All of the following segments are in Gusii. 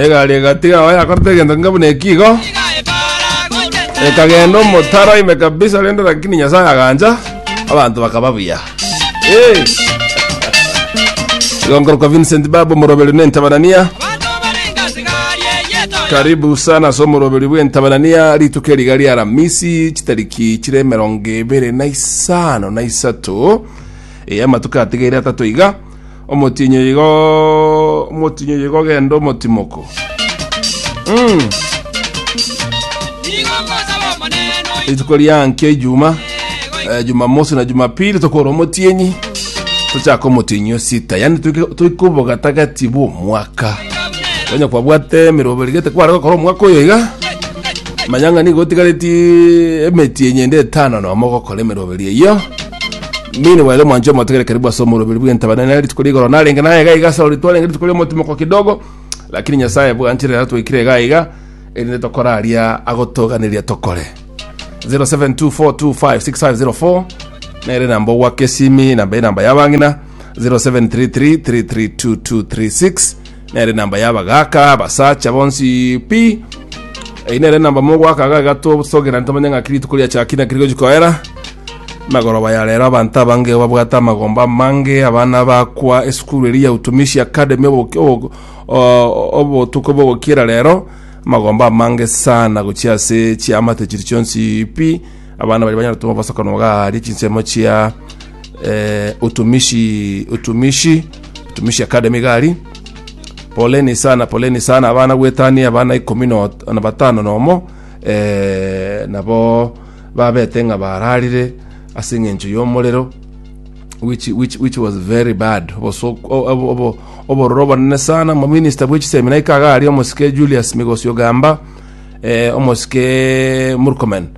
egari egatiga aho yakorete egento nka buna eki igo ekagenda omotaro ime kabisa rende lakini nyasaye agancha abanto bakaba buya Eh. igo nkorokwa vincent baba omoroberi nentabanania karibu sana ase omoroberi bw'entabanania rituko eriga ria ramisi chitariki chire emerongo ebere na isano na isato eya amatuko atigaire atato iga Omotienyi oyo igo omotienyi oyo igo ogenda omotimoko. Mm. Rituko ria nkio ijuma eh, jumamosi na jumapili tokora omotienyi tochaka omotienyi osita yani toike- toike obogatagati bwomwaka tonya kwabwate emerobo rigete kware gokora omwaka oyo iga manyang'ani gotigareti emetienyi ende etano nomo gokora emeroberio eyio Mimi ni wale mwanjo matukere karibu ase omorobiri bw'entabana nere rituko rigoro narenge naye iga iga ase twarenge rituko ry'omotimoko kidogo lakini nyasaye bwanchire aratwekire iga iga erinde tokoraria agotoganeria tokore 0724256504 nere namba ogwaka esimi namba enamba yabang'ina 0733332236 Nere namba y'abagaaka abasacha bonsi pi. Eyi nere namba mogwaka aga igatosogera ntomanye ng'aki rituko riachaki naki rigochi koera. Magoroba ya rero abanto abange babwate amagomba amange abana bakwa esukuru eri ya Utumishi Academy oboki- obo- o- obotuko bogokiera rero amagomba amange sana gochia ase chiamate chiri chionsi pi Abana baria banyare gotoma obosokano bwa aaria chinsemo chia eh, utumishi utumishi utumishi academy gari poleni sana poleni sana abana gwetania abana ikumi no- na batano nomo eh, nabo babete ng'a bararire ase eng'encho y'omorero which, which, which was very bad Oboso- o- obo- obo- obororo obonene sana mominista bwechisemina ikaga aria omosike julius migosi ogamba eh, omosike Murkomen,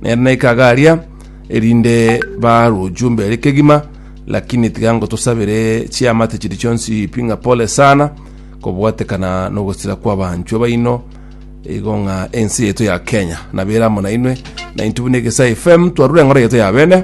nere naika iga aria, erinde baruju mbere kegima, lakini tiga ngotosabere chiamate chiri chionsi pi ng'a pole sana, kobwatekana nogosira kw'abanchwe baino, igo ng'a ense yaito ya Kenya nabere amo nainwe, 92 buna egesa FM twarure eng'ora yaito ya bene.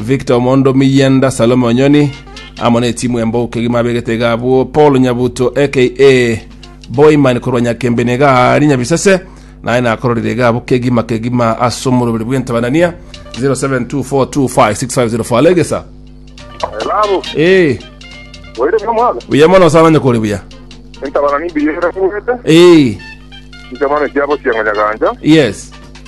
Victor Omondo Miyenda, Salome Onyoni amo n'etimu embogo kegima abegete iga abwo, Paul Nyabuto aka Boyman korwa Nyakembeni iga aari Nyabisese, naye nakororire iga abwo kegima kegima ase omoroberi bw'entabanania 0724256504 alegesa Babu, ee oire bia mwana? buya mono sana onye kore buya Entabana nimbiye era kuwete. ee Inche mwana ekiabo sianganya ganja. yes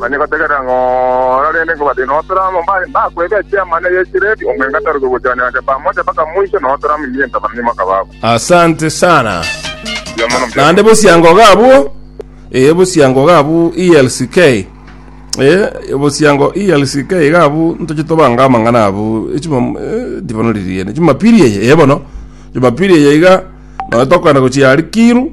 Manye gotegerera ng'a orarende nkobate notora amabare mbakwebe echiama na ey'echireedi, omong'ina taroke gochia naende pamoja mpaka moiso, na otora amamiya intama na nyuma akababo. Asante sana. Mbuya mono, mbuya Naende mono. bosiango iga abwo. Eh bosiango iga abwo ELCK. Eh bosiango ELCK iga abwo ntoche tobange amang'ana abwo. Echimo eh ndibono riria. Jumapili eye eh bono. Jumapili eye iga nonya tokogenda gochia Alikiru.